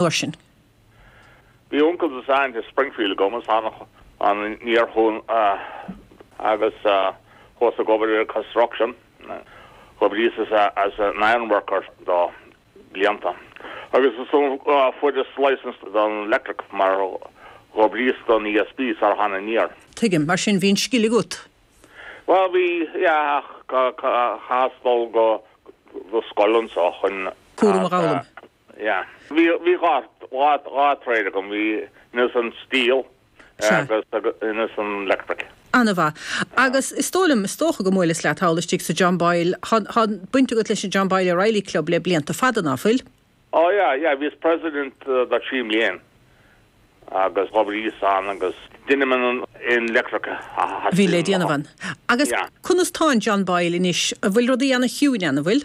uair sin. Bhí uncail ansan i Springfield agam agus thána aniar chun agus chuas ag obair ar construction. D'oibríos-sa as an ironworker do blianta agus is ann a fuaireas-sa licence don electric mar d'oibríos don ESB sar thána aniar. Tuigim. Mar sin bhí an scil agat. Bhuel bhí, yeah, ach chaitheas dul go scoil anseo chun. Cúram a ghabh liom. Yeah. Bhí, bhí dhá, dhá, dhá trade agam, bhí ins an steel Sea. agus agus ins an electric. Ana-mhaith. Agus is dóigh liom, is dócha go mbuaileas leat thall istigh sa John Boyle, tá, tá baint agat leis an John Boyle O'Reilly Club le blianta fada, ná fuil? Oh yeah, yeah, bhíos president do trí mbliain agus d'oibríos ann agus dheininn an an electric a bhí le déanamh ann. Agus Yeah. conas tá an John Boyle anois, an bhfuil rudaí ana chiúin ann, an bhfuil?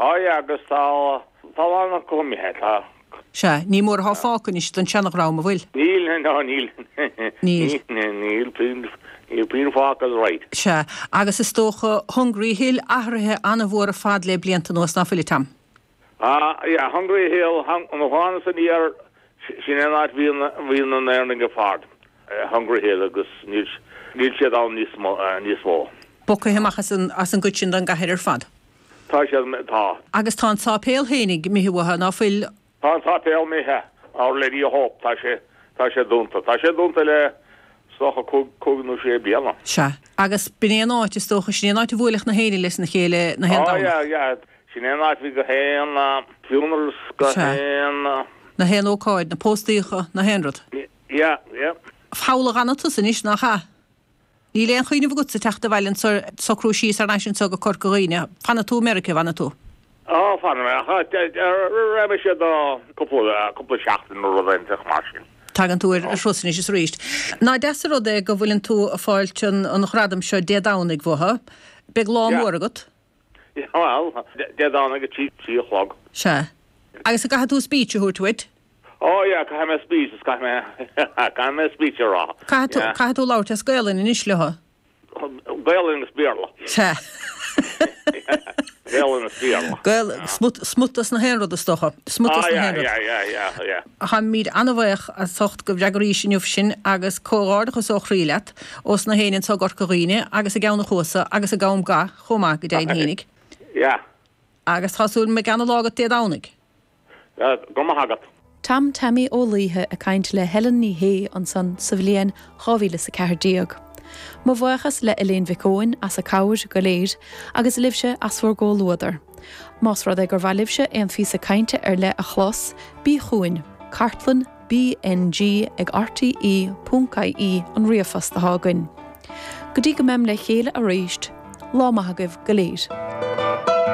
Aye, agus tá tollán an Covid, tá. Sea, ní mór atá fágtha anois den seana-dhream, a' bhfuil? Níl, ná níl, níl, níl puinn, níl puinn fágtha that's right. Sea, agus is dócha Hungry Hill, athruithe an-mhór ar fad lé blianta anuas, ná fuil, a Tom? Á, yeah, Hungry Hill, hang, nuair a thánasa aniar, sin é an áit bhí na, bhí na hÉireannaigh ar fad, Hungry Hill, agus níl, níl siad ann níos mo, níos mó. Bogtha amach as an, as an gcuid sin den gcathair ar fad. Tá sé, tá. Agus tá an tsáipéal féin imithe uathu, ná fuil. Tá an tsáipéal imithe, Our Lady of Hope, tá sé, tá sé dúnta. Tá sé dúnta le, is dócha, cúig, cúig nó sé bliana. Sea. Agus b'in é an áit, is dócha, sin é an áit a bhuaileadh na hÉireannaigh leis na chéile, na haon Domhnach. Á, yeah, yeah. Sin é an áit a bhí na haon, funerals, na Sea. haon. Na haon ócáid, na póstaíocha, na haon rud. Yeah, yeah. Foghlagadh an-iontas anois, nach ea? Níl aon chuimhneamh agatsa teacht abhaile chun socrú síos thar n-ais anseo go Corca Dhuibhne. Fanfaidh tú i Meirice, an bhfanfaidh tú? Á, fanfaidh mé, ach raghaidh mise do cúpla seachtain nó rud inteacht mar sin. Tagann tú ar thuras anois is arís. Nach deas an rud é go bhfuileann tú ag fáilt an ghradaim seo Dé Domhnaigh uathu. Beidh lá mór agat. Bhuel, Dé Domhnaigh a trí a chlog. Sea. Agus an gcaithfidh tú speech a thabhairt uait? Oh yeah, caithfidh mé speech, is caithfidh mé, caithfidh mé speech a rá, Caithfidh tú, yeah. caithfidh tú labhairt as Gaelainn anois leo. Gaelainn agus Béarla. Sea. Gaelainn agus Béarla. Gael, smut, smut dos na haon rud is dócha. Smut dos na haon rud. Ah, yeah, yeah, yeah, yeah, yeah. Táimid an-bhuíoch as ucht go bhfreagraís inniu sinn agus comhghairdeachas ó chroí leat ós na héinne anseo i gCorca Dhuibhne agus i gCeann a Chuasa agus i gCom Ga chomh maith go deimhin fhéinig. Yeah. Agus tá súil agam go mbeidh an-lá agat Dé Domhnaigh. Go maith agat. Tom Taimí Ó Laoithe ag caint le Helen Ní Shé ansan sa bhliain 2000 is 14. Mo bhuíochas le Léan Mhic Eoin as a cabhair go léir agus libhse as bhur gcomhluadar. Más rud é gur mhaith libhse aon phíosa cainte ar leith a chlos, bí chugainn, cartlann BNG ag rte.ie an ríomhphost atá againn. Go dtí go mbeim le chéile arís, lá maith agaibh go léir.